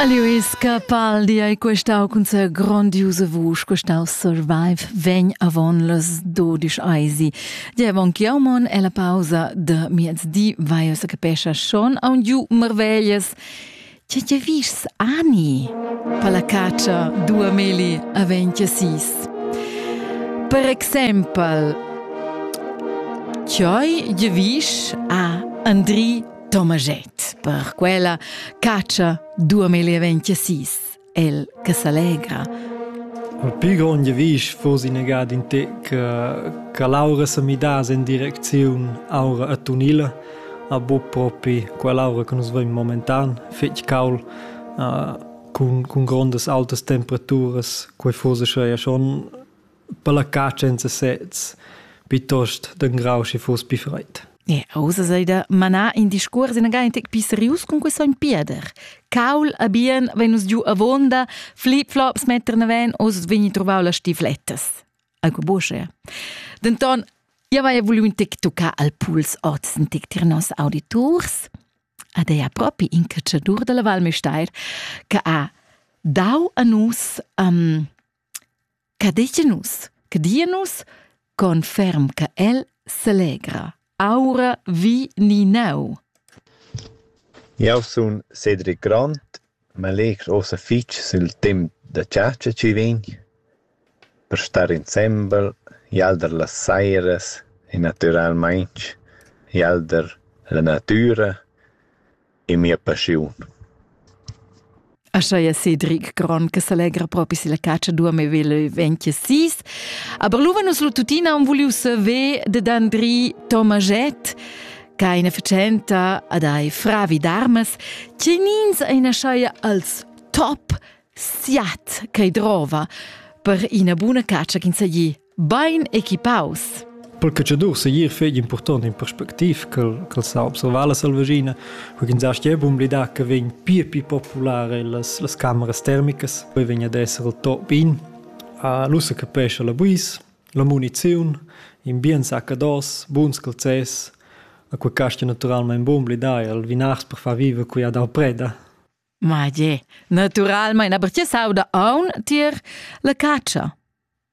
Aliuis Capaldi ei questau cun sa grondiusa vusch, questau survive vegn avon las dodisch eisi. Diavon Chiaumon e la pausa de miezdi vai se capescha schon a un giu marveglias. Tge tge vis ani? Palla caccia dua meli a venti sis. Per exempel, Cioi de vis a Andri Tomaschett per quella catscha 2026, el che s'allegra. Al pli grond vis fos innegad in te che che Laura se midas in direcziun aura a Tunila, a bu propi quell'aura che nus vem momentan, fetg caul, uh, cun, cun grondas altas temperaturas, quei fose sche schon Palaccà senza sez, piuttost d'engrau sche foss pi freid. E ussa sei da manar in discuors inagentic pi serius cun quei sogn Pieder. Caul a bien vegn nus giu avonda, flip flops metter naven, oz vegni trovau las stiflettas. Alco buche. Denton, io vai vuliu un tic tuccar al puls oz in tic tir nos auditurs. Ad ei propi in cacciadur dalla Val Mesteir, che ha dau a nus um, Che dechen nus? Che dia nus? Conferm che el selegra. Aura vi ni neu. Eu sun Cedric Grant, ma legr ossa fich sül temp da chatscha chi vegn per star insembel, jalder las sairas e natüralmaing jalder la natüra e mia passiun. Aschia Cedric Gron che s'allegra propi se la caccia dua me vele venche sis. Aber luva nus lu tutina un vuliu saver de Andri Tomaget, ca ina facenta ad ai fravi d'armas, che nins ein aschaia als top siat che drova per ina buna caccia ch'in sagli Bain equipaus. Per catschador segir fegli impurtont in perspectiv che sa observar la selvaschina, quindi sa stia bun blidar che vegn pir più popular las, las cameras termicas, poi vegn ad essere il top in. L'ussa capesce la buis, la muniziun, in bien saccados, buns calzes, a quei casti naturalmente bun blidar il vinars per far vive qui ad Alpreda. Ma je, naturalmente, aber ti sauda aun tier la caccia.